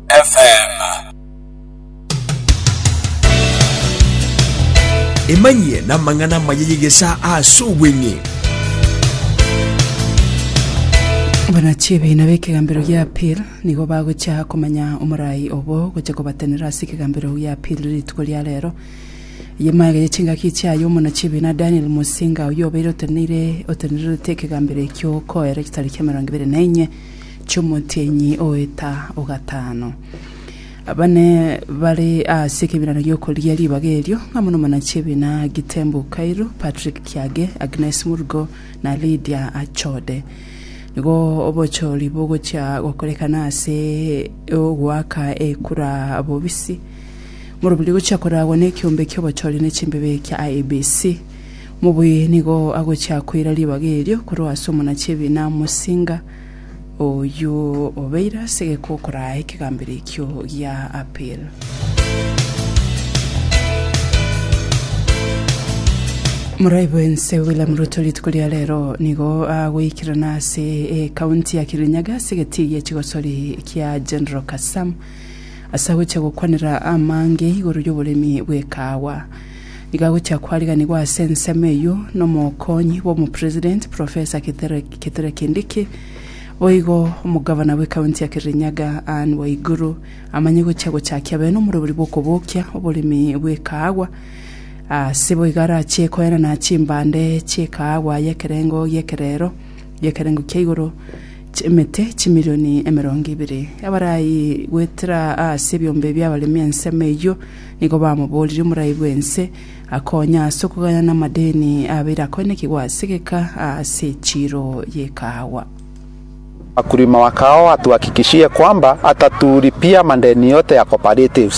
FM. Emanyie n'amang'ana amaya y'egesaa ase obweng'e. Abanachi ebiina b'ekegambero gia Apir nigo bagocha komanya omorai obo gocha kobatenera ase ekegambero gia Apir rituko ria rero. Eye maega ye chingaki chiaye omonachi ebiina Daniel Musinga oyio obeire oteneire otenererete ekegambero ekio koera egetari kia emerongo ebere na enye chi'omotienyi oeta o gatano. Abane bare ase ekebiirano gi'okoria ribaga erio, amo nomwana chi'ebiina Gitembu Kairu, Patrick Kiage, Agnes Murugo, na Lydia Achode. Nigo obochori bogochia gokorekana ase ogoaka ekura bobisi. Morobiri gochia koragwa nekiombe ki'obochori ne chimbebe kia IEBC. Mobuyi nigo agochia koira ribaga erio korwa ase omonachi'ebiina omosinga, oyio obeire ase egekokoro aa ekegambero ekio gia Apil. Morai bw'ense William Ruto rituko ria rero nigo agoikerana ase ekaunti ya Kirinyaga ase egetii gi'echigosori kia General Kasam. Ase agochia gokwanera amange igoro y'oboremi bw'ekaawa, nigo agochia kwariganigwa ase ensemo eyio n'omokonyi bw'omopresident, Professor Kithure Kithure Kindiki. Boigo omogavana bw'ekaunti ya Kirinyaga, Ann Waiguru, amanye gochia gochakia bene omorobori bw'okobokia oboremi bw'ekaawa. Ase boigo arachie koenana chimbande chi'ekaawa y'ekerengo gi'ekerero, gi'ekerengo kia igoro, ch'emete chimilioni emerongo ebere. Abarai goetera aase ebiombe bi'abaremi ensemo eyio nigo bamoboorire omorai bw'ense akonye aase okoganya namadeni abeire akoinekigwa aase egeka aase echiro y'ekaawa. Wakulima wa kahawa watuhakikishie kwamba hataturi pia madeni yote ya cooperative.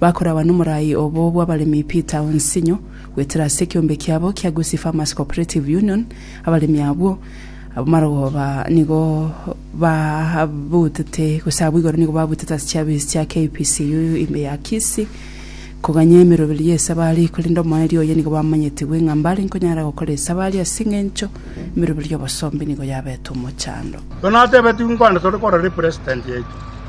Bakoragwa nomorai obo bw'abaremi Peter Onsinyo, goetera ase ekeombe kiabo kia Gusii Farmers Cooperative Union, abaremi abwo b'amarogoba nigo babutete gose abwo igoro nigo babutete ase chiabisi chia KPCU ime ya Kisii koganya emeroberi y'esabari korende omoerio oye nigo bamanyetigwe ng'a mbare nkonyara gokora esabari ase eng'encho emeroberi y'obosombe nigo yabete omochando. Tonatebetigwe nkwande tore korora represident yaito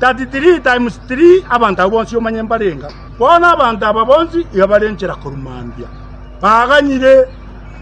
33 times three abanto abwo bonsi omanye mbarenga. Bono abanto aba bonsi iga bare enchera korwa mambia, baganyire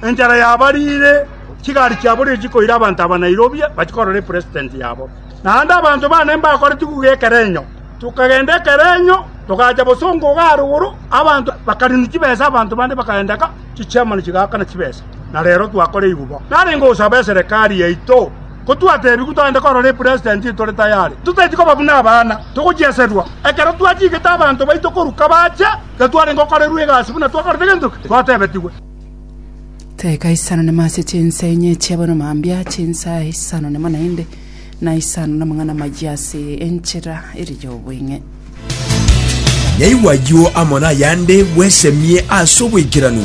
enchera yabariire, chigari chiaborire chikoira abanto aba Nairobi bachie korora epresident yabo. Naende abanto baane mbakore tigugu y'ekerenyo, tokagenda ekerenyo togacha bosongo iga arigoro, abanto bakarinu chibesa abanto bande bakagenda ka, chichairman chigaakana chibesa, na rero twakora eiguba. Narenge gosaba eserekari yaito. Ko twatebigwe togende korora epresident etore tayare, totaeti koba buna abana, togochieserwa. Ekero twachigete abanto baito korwa kabache, iga twarenge okorerwa egasi buna twakorete gento ki twatebetigwe. Teka isano nemo ase chinsa enye chi'abono mambia, chinsa isano nemo naende, na isano namang'ana amayia ase enchera ere y'obweng'e. Naigwa ayio amo nayande bwesemie ase oboikeranu.